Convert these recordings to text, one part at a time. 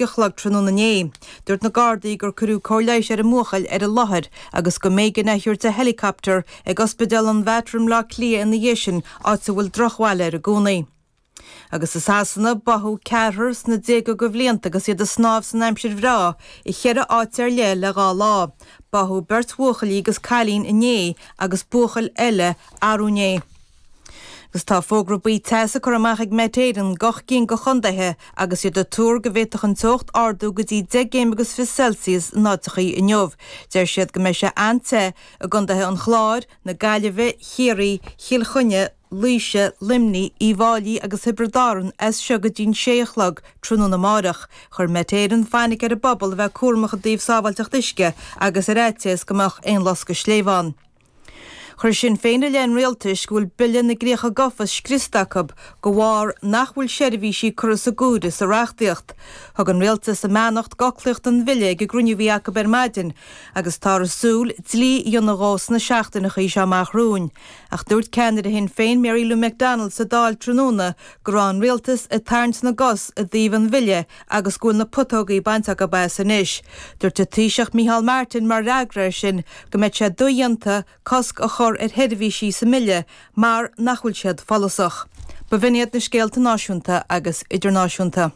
a chlog tráthnóna inné. Dúirt na Gardaí gur cuireadh cóir leighis ar an mbuachaill ar an láthair agus go mb'éigean é a thabhairt i héileacaptar ag Ospidéal an Mhater i mBleá Cliath ina dhiaidh sin, áit a bhfuil drochbhail air i gcónaí. Agus i Sasana, báthadh ceathrar sna déaga go bhlianta agus iad ag snámh san aimsir bhreá i cheithre áit ar leith le dhá lá. Báthadh beirt bhuachaillí agus cailín inné agus buachaill eile arú inné. Agus tá fógra buí teasa curtha amach ag Met Éireann go ocht gcinn go chontaetha agus iad ag tuar go bhféadfadh an teocht ardú go dtí 10 gcéim agus fiche Celsius in áiteachaí inniu. Deir siad go mbeidh sé an-te i gcontaetha an Chláir, na Gaillimhe, Chiarraí, Chill Chainnigh, Laoise, Luimnigh, Uíbh Fháilí agus Thiobraid Árann as seo go dtí'n 6 a chlog tráthnóna amárach. Chuir Met Éireann fainic ar an bpobal a bheith cúramach i dtaobh sábháilteacht uisce agus ar fhaitíos go mbeadh aon loscadh sléibhe ann. Chuir Sinn Féin i leith an Rialtais go bhfuil Bille na gCríocha Gofa scriosta acu go bharr nach bhfuil seirbhísí curtha sa gcomhaireamh sa reachtaíocht. Thug an Rialtas a mbeannacht go fhoclaíocht an Bhille ag an gcruinniú a bhí acu ar maidin agus táthar ag súil dlí a dhéanamh dhó sna seachtaineachaí seo amach romhainn ach dúirt ceannaire Shinn Féin Mary Lou McDonald sa Dáil tráthnóna go raibh an rialtas ag tarraingt na gcos i dtaobh an bhille agus go bhfuil na putógaí bainte acu as anois. Dúirt an Taoiseach Micheál Martin mar fhreagra air sin go mbeidh sé dodhéanta cosc a chur ar sheirbhísí sa mbille mar nach bhfuil siad follasach. Ba bh'in iad na scéalta náisiúnta agus idirnáisiúnta.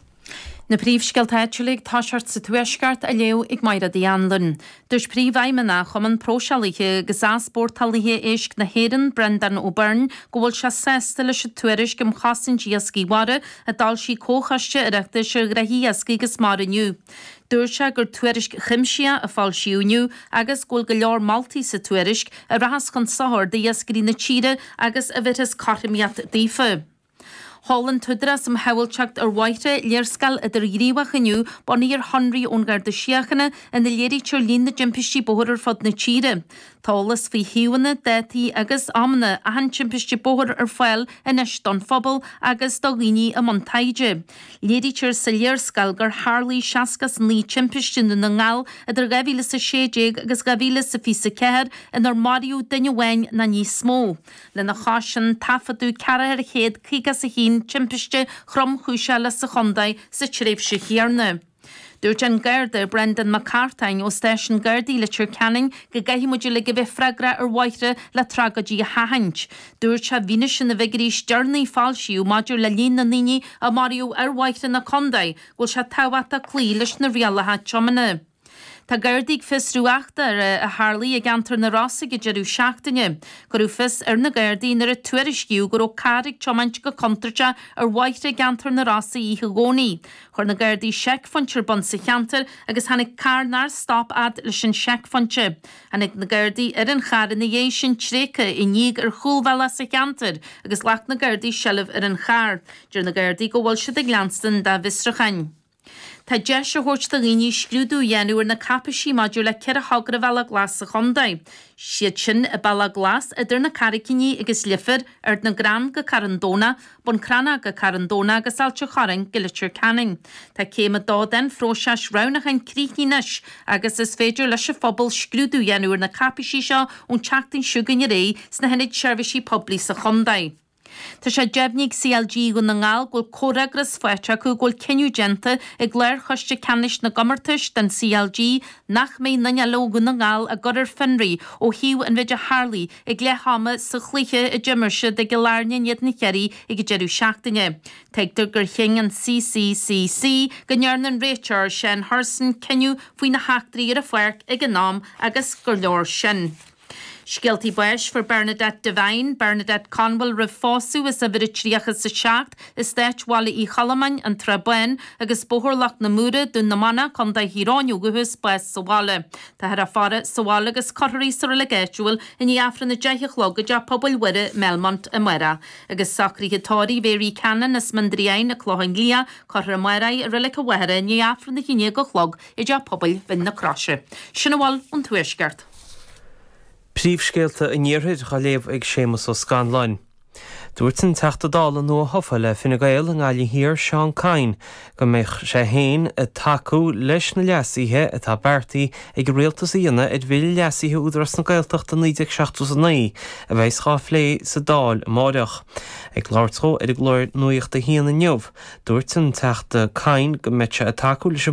Na príomhscéalta áitiúla ag tosacht sa Tuaisceart á léamh ag Máiréad Uí Anluain. Dúirt Príomhfheidhmeannach Chumann Próiseálaithe agus Easpórtálaithe Éisc na hÉireann, Breandán Ó Beirn, go bhfuil sé sásta leis an tuairisc um chosaint iascaigh mhara a d'fhoilsigh Comhchoiste Oireachtais ar Ghnoithe Iascaigh agus Mara inniu. Dúirt sé gur tuairisc chuimsitheach a foilsíodh inniu agus go bhfuil go leor moltaí sa tuairisc a rachas chun sochair d'iascairí na tíre agus a bheirfeas cothromaíocht daofa. Sheol an tÚdarás um Shábháilteacht ar Bhóithre léarscáil idirghníomhach inniu bunaithe ar shonraí ón Gharda Síochána ina léirítear líon na dtimpistí bóthair ar fud na tíre. Tá eolas faoi shuíomhanna, dátaí agus amanna achan timpiste bóthair ar fáil anois don phobal agus do dhaoine i mbun taighde. Léirítear sa léarscáil gur tharlaigh 69 timpiste i nDún na nGall idir 2016 agus 2024 inar maraíodh duine amháin nó níos mó. Lena chois sin, taifeadadh 451 timpiste thromchúiseach eile sa Chondae sa tréimhse chéanna. Dúirt an Garda, Brendan Mac Cartáin, ó Stáisiún Gardaí Leitir Ceanainn, go gcaithfidh muid uilig a bheith freagrach ar bhóithre le tragóidí a sheachaint. Dúirt sé i bhfianaise na bhfigiúirí is deireanaí a foilsíodh maidir le líon na ndaoine a maraíodh ar bhóithre na Condae go bhfuil sé tábhachtach cloí leis na rialacha tiomána. Tá Gardaí ag fiosrú eachtra a tharlaigh i gceantar na Rosa ag deireadh seachtaine. Cuireadh fios ar na Gardaí nuair a tuairiscíodh go raibh carr ag tiomáint go contúirteach ar bhóithre i gceantar na Rosa oíche Dhomhnaigh. Chuir na Gardaí seicphointe ar bun sa cheantar agus tháinig carr nár stop fhad leis an seicphointe. Tháinig na Gardaí ar an charr ina dhiaidh sin tréigthe i ndíog ar chúlbhealach sa cheantar agus ghlac na Gardaí seilbh ar an charr. Deir na Gardaí go bhfuil siad ag leanstan dá bhfiosrúcháin. Tá deis á thabhairt do dhaoine scrúdú a dhéanamh ar na cáipeisí maidir le ceithre thogra Bhealach Glas sa chontae. Is iad sin, Bealach Glas idir na Carraigíní agus Leifear, Ard na gCrann go Carn Domhnach, Bun Cranncha go Carn Domhnach agus Ailt an Chorráin go Leitir Ceanainn. Tá céim a dó den phróiseas roghnúcháin críochnaithe anois agus is féidir leis an phobal scrúdú a dhéanamh ar na cáipeisí seo ón tseachtain seo chugainn ar aghaidh sna hIonaid Seirbhísí Poiblí sa chontae. Tá sé deimhnithe ag CLG Dhún na nGall go bhfuil comhfhreagras faighte acu go bhfuil cinneadh déanta ag Lár-Choiste Ceannais na gComórtais den CLG nach mbeidh aon duine ó Dhún na nGall á gcur ar fionraí ó thaobh an mhéid a tharla ag leath ama sa chluiche a d'imir siad i gCill Airne in éadan Chiarraí ag an deireadh seachtaine. Tuigtear gur chinn an CCCC go ndearna an réiteoir Seán Hurson cinneadh faoi na heachtraí ar an pháirc ag an am agus gur leor sin. Scéaltaí Báis Fuair Bernadette Devine, Bernadette Conwell, roimh phósadh as uimhir a 37 Eastáit Bhaile Uí Cholmáin, An tSrath Bán agus Bóthar Loch na Móra, Dún na Manach, Co. Thír Eoghain ó dhúchas, bás sa bhaile. Táthar á faire sa bhaile agus cuirfear í sa reilig áitiúil i ndiaidh Aifreann a deich a chlog i dTeach Pobail Mhuire, Melmount, amárach. Agus socruithe tórraimh Mhary Cannon as Mín an Draighin, An Clochán Liath, cuirfear í amárach i Reilig an Mhachaire i ndiaidh Aifreann a haon déag a chlog i dTeach Pobail Mhín na Croise. Sin a bhfuil ón Tuaisceart. Príomhscéalta an Iarthair á léamh ag Séamus Ó Scanláin. Dúirt an Teachta Dála nua-thofa le Fine Gael i nGaillimh Thiar Seán Kyne go mbeidh sé féin ag tacú leis na leasuithe atá beartaithe ag an Rialtas a dhéanamh ar Bhille Leasaithe Údarás na Gaeltachta 1979 a bheas á phlé sa Dáil amárach. Ag labhairt dó ar an gclár Nuacht a hAon inniu, dúirt an Teachta Kyne go mbeidh sé ag tacú leis an